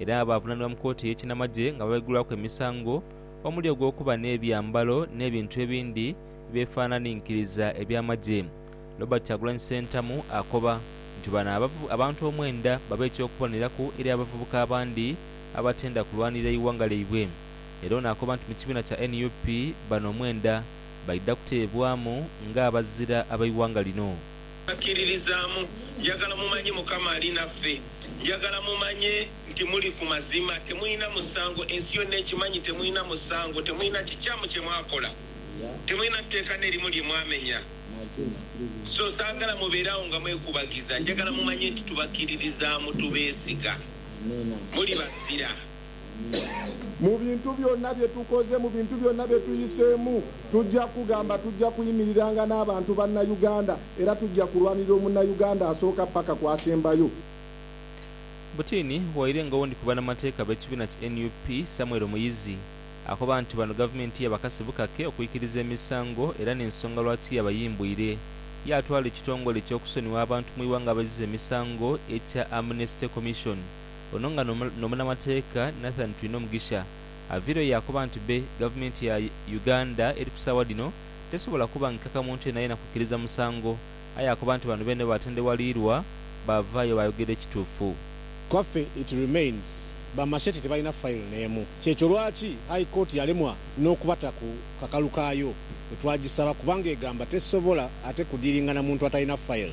Era baavunanibwa mu kooti ey'ekinamagye nga babaigulwaku emisango omuli ogw'okuba n'ebyambalo n'ebintu ebindi eby'efaananinkiriza eby'amagye. Robert Kyagulanyi Ssentamu akoba nti bano abantu omwenda babe eky'okubonereku eri abavubuka abandi abatenda kulwanirira ighanga lyaibwe. Era ono akoba nti mu kibiina kya nup bano omwenda baidha kuteebwamu ng'abazira ab'eighanga lino. Bakiririzaamu. Njagala mumanye Mukama ali naffe. Njagala mumanye nti muli ku mazima. Temulina musango. Ensi yonna ekimanyi. Temulina musango. Temulina kikyamu kye mwakola. Temulina tteeka n'erimu lye mwamenya. So saagala mubeere awo nga mwekubagiza. Njagala mumanye nti tubakiririzaamu. Tubeesiga. Muli bazira. Mu bintu byona bye tukoze, mu bintu byona bye tuyiseemu, tujja kugamba tujja kuyimiriranga n'abantu Bannauganda era tujja kulwanirira Omunnauganda asooka paka ku asembayo. Butini waire nga owundi ku banamateeka b'ekibiina ki nup Samuel Muyizi akoba nti bano gavumenti yabakase bukake okwikiriza emisango era n'ensonga lwaki yabayimbwire yaatwala ekitongole eky'okusonyiwa abantu mu iwanga abazize emisango ekya Amnesty Commission Ono nga n'omunamateeka Nathan Twinomugisha aviireyo yaakoba nti be Gavumenti ya Uganda eri ku saawa dhino tesobola kubangikaka muntu yenayena kwikiriza musango aye akoba nti bano beene baatendewaliirwa baavaayo baayogera ekituufu. Kwaffe it remains ba Machete tebalina file neemu kyekyo lwaki High Court yalemwa n'okubata ku kakalu kaayo bwetwagisaba kubanga egamba tesobola ate kudiiringa na muntu atalina file.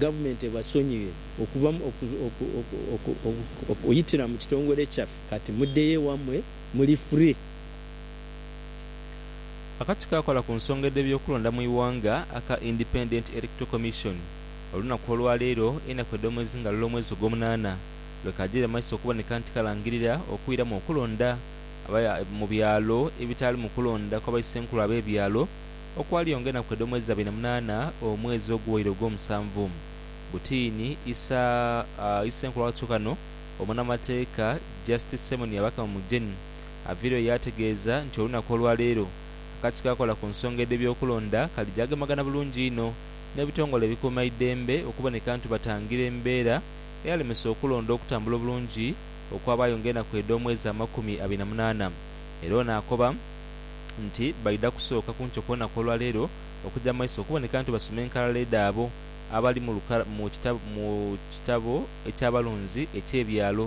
Gavumenti ebasonyiwe okuva mu okuyitira mu kitongole kyaffe kati muddeyo ewammwe muli free. Akatiko akola ku nsonga edhe byokulonda mu ighanga aka Independent Electoral Commission olunaku olwaleero enaku edhomwezi nga lule omwezi ogwomunana lwekajire maiso okuboneka nti kalangirira okwiramu okulonda mu byalo ebitaalimu kulonda kwabaisenkulu abebyalo okwalionga enaku edh'omwezi dha bina munaana, omwezi oguwaire ogw'omusanvu. Butiini, Isa, Isa enkula watu ghano, omunamateeka Justice Simon Byabakama Mugyeni aviireyo yaategeeza nti olunaku olwaleero, akakiiko akakola ku nsonga edh'ebyokulonda kalija agemagana bulungi inho n'ebitongole ebikuuma idembe okuboneka ntu batangira embeera eyalemesa okulonda okutambula obulungi okwabaayo ng'enaku edh'omwezi amakumi abiri na munaana era ono akoba nti baidha kusooka ku nkyo ku lunaku olwa leero okuja mu maiso okuboneka nti basoma enkalala edhabo abali mu kitabo eky'abalonzi eky'ebyalo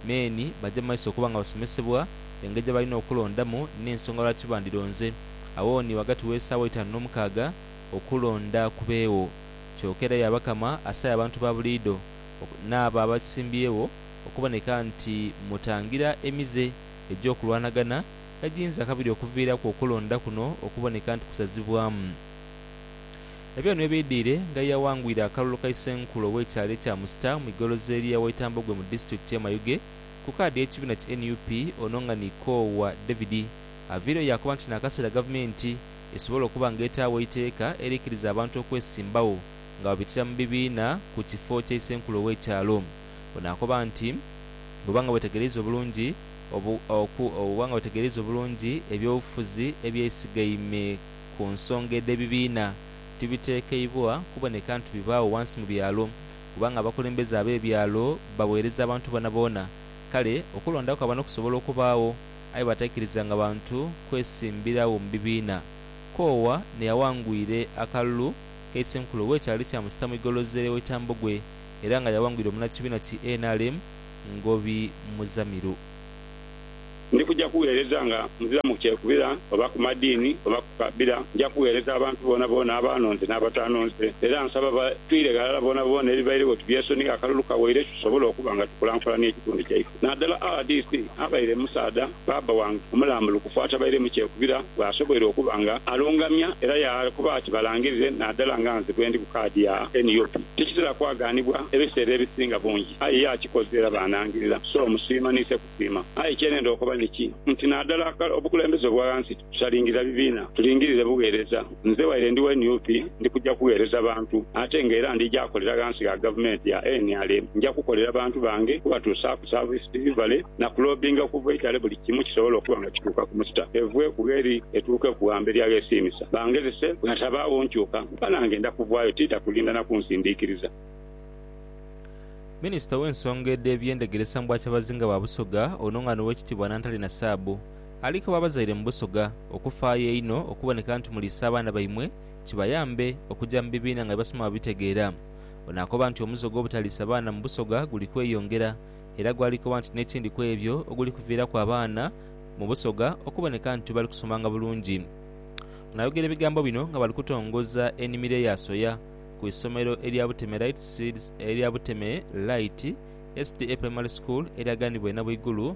meeni baje mu maiso okuba nga basomesebwa engeri gye balina okulondamu n'ensonga lwaki bandironze Awooni ghagati w'esaawa eitaanu n'omukaaga okulonda kubeegho. Kyoka era Byabakama asaba abantu ba buliidho n'abo abasimbyewo okuboneka nti mutangira emize egy'okulwanagana kagiyinza kabiri okuviiraku okulonda kuno okuboneka nti kusazibwamu. Ebyo nibyo bidhiire nga yaghangwire akalulu ka Isenkulu ow'ekyalo ekya Musita mu igolozeri ya Waitambogwe mu disitulikiti ye Mayuge ku kaadi y'ekibiina ki nup ono nga ni Koowa David aviireyo yaakoba nti n'akaseera gavumenti esobola okuba nga etaagho eiteeka erikiriza abantu okwesimbagho nga babitira mu bibiina ku kifo kya Isenkulu ow'ekyalo. Ono akoba nti bwoba nga wetegereiza obulungi, obu, oku, oba nga otegereiza obulungi eby'obufuzi eby'eisigaime ku nsonga edh'ebibiina, tibitekeibwa kuboneka nti bibaagho ghansi mu byalo, kubanga abakulembeze ab'ebyalo bagheereza abantu boonaboona. Kale okulonda kwa bano kusobola okubaagho, aye bataikirizanga bantu kwesimbiragho mu bibiina. Koowa n'eyawangwire akalulu ka Isenkulu we kyali kyamusita mu igolooza ery'ow'ekyambogwe era nga yawangwire omunakibiina ki nrm, ngobi muzamiru. Ndi kuja kugheereza nga nzira mu kyekubira oba ku madiini oba ku kabira. Nja kugheereza abantu boonaboona abaanonze n'abataanonze. Era nsaba batwire ghalala boonaboona ebibairegho tubyesonie akalulu kawaire tusobole okuba nga tukulankulania ekitundu kyaife. Nadala rdc abaire musaadha. Baaba wange omulambulukufu atabairemu kyekubira bw'asoboire okuba nga alungamya era yaakoba ati, Balangirire nadala nga nze bwendi ku kaadi ya NUP. Tikitera kwagaanibwa ebiseera ebisinga bungi, aye ye akikoze era bw'anangirira. So musiima ni se kusiima. Aye kye nenda okoba niki nti nadala obukulembeze obwa ghansi, Tutalingirira bibiina, tulingirire bugheereza. Nze waire ndi wa nup, ndi kuja kugheereza bantu ate nga era ndija kolera ghansi gha gavumenti ya nrm. Nja kukolera bantu bange, kubatuusaaku service delivery na kulobbinga okuva eitale buli kimu kisobole okuba nga kituuka ku musita, evwe ku gheri etuuke ku ghamberi aghesiimisa. Bangezese, bwetabaagho nkyuka, kuba nange nda kuvaayo tiidha kulinda na kunsindiikiriza. Minisita ow'ensonga edh'ebyendegeresa mu Bwakyabazinga bwa Busoga, ono nga n'Owekitiibwa Nantale Nasaabu, Ali kuba abazaire mu Busoga okufaayo einho okuboneka nti muliisa abaana baimwe kibayambe okuja mu bibiina nga bye basoma babitegeera. Ono akoba nti omuze ogw'obutaliisa baana mu Busoga guli kweyongera era gwali koba nti n'ekindi ku ebyo oguli kuviiraku abaana mu Busoga okuboneka nti tibali kusomanga bulungi. Ono ayogera ebigambo bino nga bali kutongoza enimiro eya soya ku isomero erya Buteme Light Seeds erya Buteme Light SDA Primary School eryaganibwa e Nabwigulu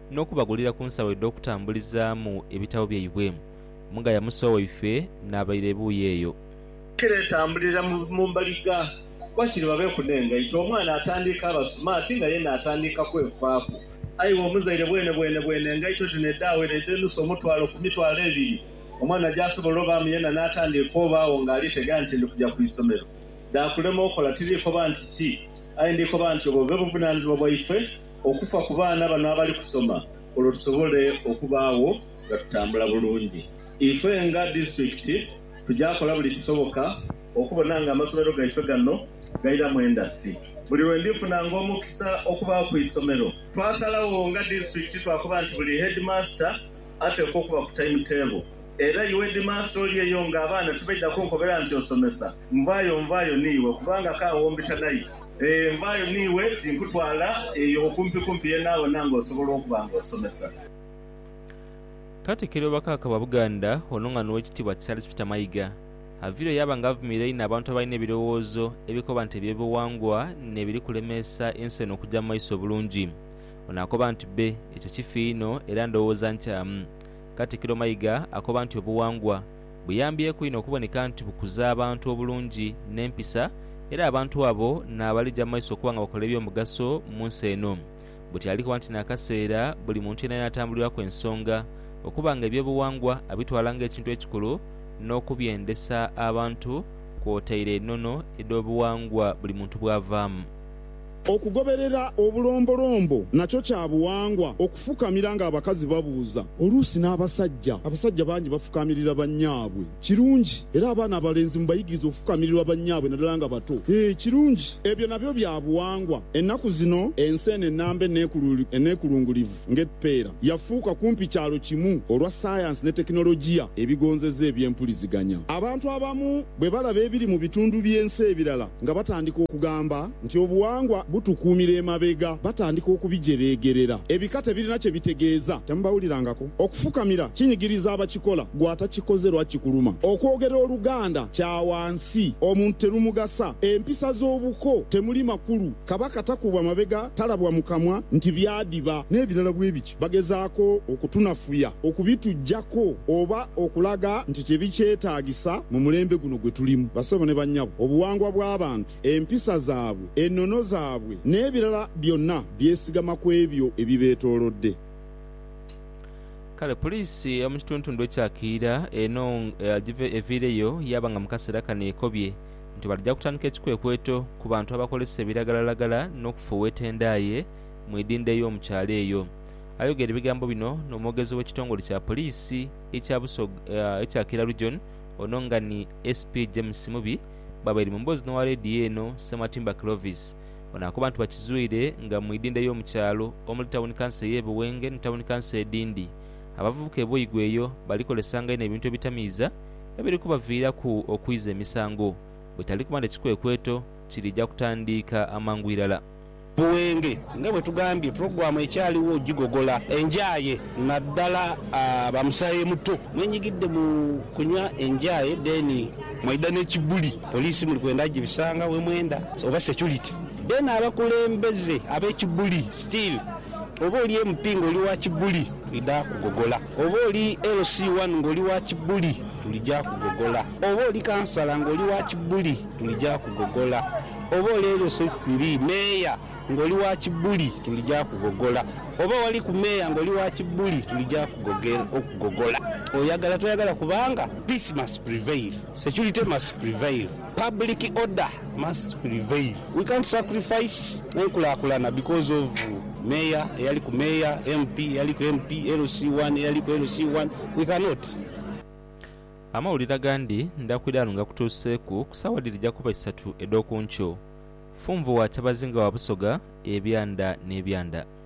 n'okubagulira ku nsawo edh'okutambulizaamu ebitabo byaibwe. Mugaya Musa waife n'abaire ebuuyi eyo. Kiretambulira mu mbaliga wakiri babeeku n'engaito. Omwana atandiika aba sumaati nga ye n'atandiika kwefaaku. Aye iwe omuzaire bwenebwene bwene engaito dhino edhaawera edh'enusu omutwalo ku mitwalo ebiri, omwana gy'asobola obaamu yena n'atandiika obaagho ng'ali tegera nti ndi kuja ku isomero, dhaakulema okola. Tiriikoba nti ki, aye ndikoba nti obwo bube buvunaanizibwa bwaife. okufa ku baana bano abali kusoma olwo tusobole okubaagho nga tutambula bulungi. Ife nga disitulikiti tuja kola buli kisoboka okubona nga amasomero gaife gano gairamu endasi. Buli lwe ndifunanga omukisa okuba ku isomero, twasalagho nga disitulikiti twakoba nti buli heedimaasita ateekwa okuba ku taimutebo era iwe hedimaasita oli eyo nga abaana tibaidha kunkobera nti osomesa nvaayo nvaayo ni iwe kubanga ka wombita naye. Ee, mbaayo n'iwe, tinkutwala eyo okumpikumpi yoonayoona ng'osobola okuba ng'osomesa. Katikiro wa Kabaka Buganda Onong'ana Owekitiibwa Charles Peter Mayiga aviireyo yaaba nga avumirira einho abantu abalina ebirowoozo ebikoba nti eby'obuwangwa nebiri kulemeesa ensi eno okuja mu maiso obulungi. Ono akoba nti bbe ekyo kifi inho era ndowooza nkyamu. Katikiro Mayiga akoba nti obuwangwa. buyambyeku inho okuboneka nti bukuza abantu obulungi n'empisa era abantu abo naabalija mu maiso okuba nga bakola eby'omugaso mu nsi eno. Butyali kuba nti n'akaseera buli muntu yenayena atambulirwaku ensonga okuba nga eby'obuwangwa abitwala ng'ekintu ekikulu n'okubyendesa abantu kwotaire enono edh'obuwangwa buli muntu bwavaamu. Okugoberera obulombolombo nakyo kya buwangwa. Okufukamira ng'abakazi babuuza. Oluusi n'abasajja. Abasajja bangi bafukaamirira bannyaabwe. Kirungi. Era abaana abalenzi mubayigirize okufukamirirwa bannyaabwe naddala nga bato. Hee, kirungi. Ebyo nabyo bya buwangwa. Ennaku zino ensi eno ennamba eneekulungulivu. Ng'epeera yafuuka kumpi kyalo kimu olwa sayansi ni tekinologiya ebigonzeza eby'empuliziganya, abantu abamu bwe balaba ebiri mu bitundu by'ensi ebirala nga batandika okugamba nti obuwangwa butukuumira emabega. Batandika okubijereegerera ebika tebirina kye bitegeeza. Temubawulirangako. Okufukamira kinyigiriza abakikola. Ggwe atakikoze lwaki kikuluma? Okwogera Oluganda kya wansi. Omuntu terumugasa. Empisa z'obuko temuli makulu. Kabaka takubwa mabega, talabwa mu kamwa nti byadiba, n'ebirala bwe biti. Bagezaako okutunafuya, okubituggyako, oba okulaga nti tebikyetaagisa mu mulembe guno gwe tulimu. Bassebo ne bannyabo, obuwangwa bw'abantu, empisa zaabwe, enono zaabwe, n'ebirala byonna byesigama ku ebyo ebibeetoolodde. Kale puliisi ey'omu kitundutundu ekya Kiira eno eviireyo yaaba nga mu kaseera kano ekobye. nti balija kutandika ekikwekweto ku bantu abakozesa ebiragalalagala n'okufuuweeta endaaye mu idhindho ey'omu kyalo eyo. Ayogera ebigambo bino n'omwogezi w'ekitongole kya poliisi ekya Busoga ekya Kira Region ono nga ni SP James Mubi bwabaire mu mboozi n'owa leediyo eno Ssematimba Clovis. Ono akoba nti bakizwire nga mu idhindho ey'omu kyalo omuli tawuni kanso ey'e Buwenge ni tawuni kanso edhindi abavubuka e Boigwe eyo balikozesanga inho ebintu ebitamiiza ebiri kubaviiraku okwiza emisango bwetali kuba nti ekikwekweto kiriija kutandiika amangu irala. Buwenge, nga bwe tugambye, pulogulaamu ekyaliwo ogigogola enjaaye naddala ba musaayemuto. Mwenyigidde mu kunywa enjaaye then mwaidha n'ekibuli. Poliisi muli kwenda agibisanga we mwenda oba security? Then abakulembeze ab'ekibuli still oba oli MP nga oli wa kibuli twidha kugogola. Oba oli LC one nga oli wa kibuli tulija kugogola oba oli kansala nga oli wa kibuli tulija kugogola oba oli LC three meeya nga oli wa kibuli tulija kugogola oba wali ku meeya nga oli wa kibuli tulija kugogola oyagala toyagala kubanga peace must prevail security must prevail. Public order must prevail, we can't sacrifice enkulakulana because of mayor eyali ku mayor, MP eyali ku MP, LC one eyali ku LC one, we cannot. Amawulire agandi ndaakwidha ghano ngakutuuseeku ku saawa dhiri dha kuba isatu edh'oku nkyo. Funvu wa Kyabazinga wa Busoga, Ebyanda n'Ebyanda.